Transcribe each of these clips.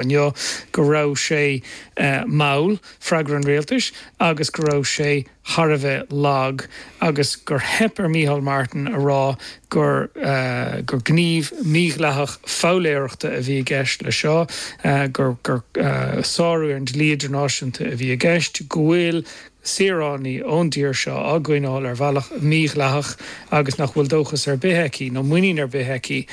inniu go raibh sé mall, freagra an rialtais, agus go raibh sé thar a bheith lag agus gur theip ar Micheál Martin a rá gur gníomh mídhleathach foghlaireachta a bhí i gceist leis seo, gur sárú ar an dlí idirnáisiúnta a bhí i gceist, go bhfuil saoránaigh ón dtír seo á gcoinneáil ar bhealach mídhleathach agus nach bhfuil dóchas ar bith aici nó muinín ar bith aici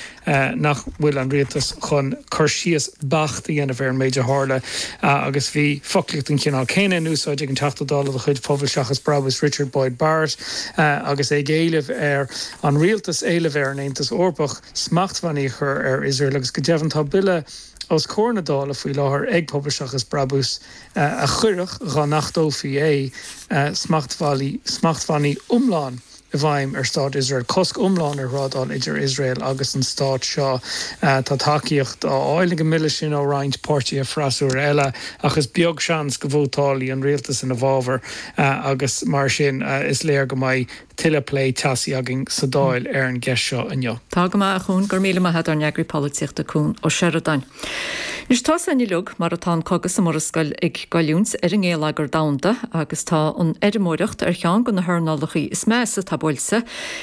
nach bhfuil an rialtas chun cur síos beacht a dhéanamh ar an méid a tharla. Agus bhí foclaíocht den chineál céanna in úsáid ag an Teachta Dála de chuid Phobal Seachas Brabús Richard Boyd Barrett agus é ag éileamh ar an rialtas éileamh ar an Aontas Eorpach smachtbhannaí a chur ar Iosrael. Agus go deimhin tá bille os comhair na Dála faoi láthair ag Pobal Seachas Brabús a a chuirfeadh, dhá n-achtófaí é, smachtbhannaí iomlán i bhfeidhm ar Stát Iosrael, cosc iomlán ar thrádáil idir Iosrael agus an Stát seo. Tá tacaíocht á fháil ag an mbille sin ó roinnt páirtithe freasúra eile ach is beag seans go vótálfaidh an rialtas ina fhabhar agus mar sin is léir go mbeidh Tuilleadh plé teasaí againn sa Dáil ar an gceist seo inniu. Tá go maith, a Chuain, go raibh míle maith ag ár n-eagraí polaitíochta Cuan Ó Seireadáin. Anois, tá a fhios againn uilig mar atá an cogadh sa Mhurascaill ag goilliúint ar an ngéilleagar domhanda agus tá an fheirmeoireacht ar cheann de na hearnálacha is measa atá buailte.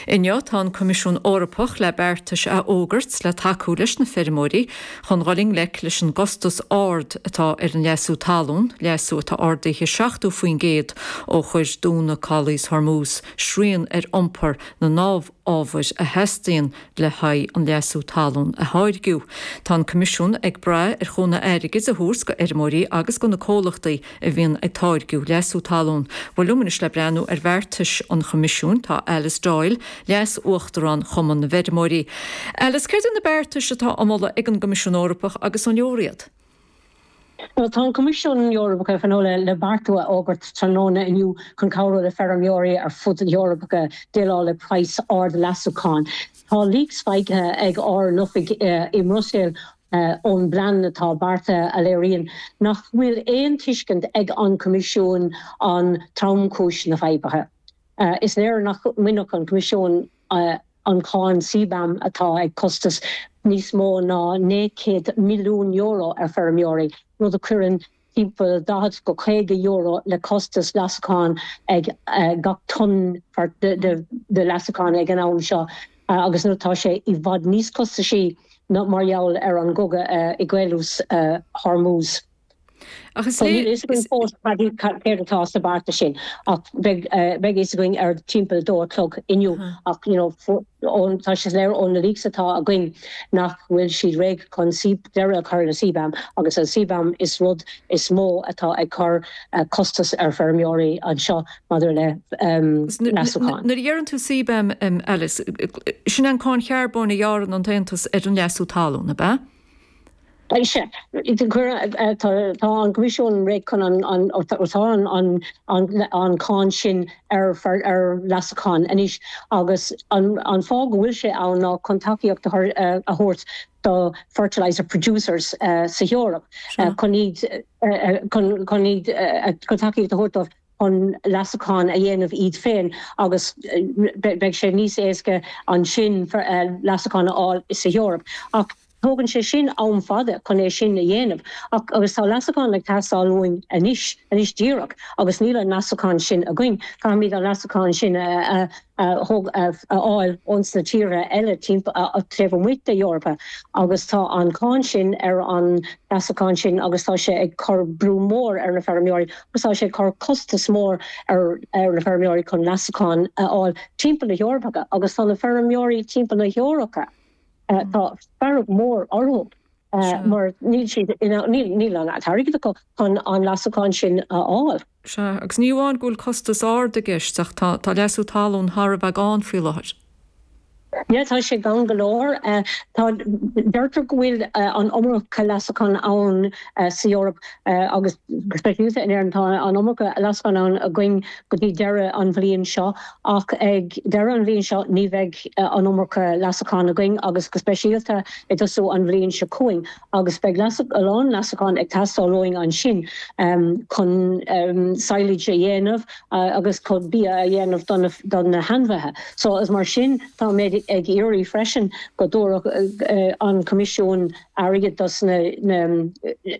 Inniu, tá an Coimisiún Eorpach le beartais a fhógairt le tacú leis na feirmeoirí, Chun dul i ngleic leis an gcostas ard atá ar an leasú talún, leasú atá ardaithe 70% ó chuir dúnadh Chaolas Hormuz srian ar iompar na n-amhábhar a theastaíonn le haghaidh an leasú talún a tháirgeadh, tá an Coimisiún ag brath ar chúnamh airgid a thabhairt go fheirmeoirí agus go na comhlachtaí a bhíonn ag táirgeadh leasú talún. Bhuel, liom anois le breathnú ar bheartais an Choimisiúin, tá Alice Doyle, Leas-Uachtarán Chumann na bhFeirmeoirí. Alice, céard iad na beartais atá á moladh ag an gCoimisiún Eorpach agus an leor iad? Bhuel, tá an Coimisiún Eorpach, ag tnúth le bearta a fhógairt tráthnóna inniu chun cabhrú le feirmeoirí ar fud na hEorpa déileáil le praghas ard leasúcháin. Tá leaks faigthe ag ár n-oifig i mBruiséil ón bplean atá beartaithe a léiríonn nach bhfuil aon tuiscint ag an Coimisiún ar thromchúis na faidhbe. Is léir nach mbainfeadh an Coimisiún an cháin CBAM atá ag cosaint níos mó ná €900 milliún ar feirmeoirí, rud a chuireann timpeall €40-€50 le costas leasacháin ag gach tonna de leasacháin ag an am seo agus nó tá sé i bhfad níos costaisí ná mar gheall ar an gcogadh i gCaolas Hormuz. Ach is léir. Níl a fhios againn fós cad iad, céard atá sa bheartas sin ach beidh a fhios againn ar timpeall dó a chlog inniu ach you know tá sé soiléir ó na leaks atá againn nach bhfuil siad réidh chun deireadh a chur le CBAM, agus an CBAM an rud is mó atá ag cur costas ar feirmeoirí anseo maidir le leasúcháin. Nuair a dheireann tú CBAM, Alice, sin é an cháin charbóin a ghearrann an tAontas ar an leasú talún, ab ea? Is ea. Tá an Coimisiún réidh chun an cháin sin ar fad ar leasachán anois agus an fáth go bhfuil sé ann ná chun tacaíocht a thabhairt do fertiliser producers sa hEoraip chun iad chun iad chun tacaíocht a thabhairt dóibh chun leasachán a dhéanamh iad féin agus beidh sé níos éasca ansin leasachán a fháil sa hEoraip Tógann sé sin am fada chun é sin a dhéanamh agus tá leasachán ag teastáil uainn anois, anois díreach, agus níl an leasachán sin againn, caithfimid an leasachán sin a fháil ó sna tíortha eile timpeall, taobh amuigh den Eoraip agus tá an cháin sin ar an leasachán sin agus tá sé ag cur brú mór ar na feirmeoirí agus tá sé ag cur costas mór ar na feirmeoirí chun leasachán a fháil timpeall na hEorpa agus tá na feirmeoirí timpeall na hEorpa Tá fearg mhór orthu mar níl siad, níl an t-airgead acu chun an leasachán sin a fháil. Sea, agus ní amháin go bhfuil costas ard i gceist ach tá leasú talún thar a bheith gann faoi láthair. Sea, tá sé gann go leor. Deirtear go bhfuil an iomarca leasachán ann sa Eoraip agus go speisialta in Éirinn. Tá an iomarca leasachán ann againn go dtí deireadh an bhliain seo ach ag deireadh an bhliain seo ní bheidh an iomarca leasachán againn agus go speisialta i dtosú an bhliain seo chugainn agus beidh a lán leasachán ag teastáil uainn ansin chun sadhlas a dhéanamh agus chun bia a dhéanamh do na hainmhithe so is mar sin tá mé ag iarraidh freisin go dtabharfadh an Coimisiún airgead dos na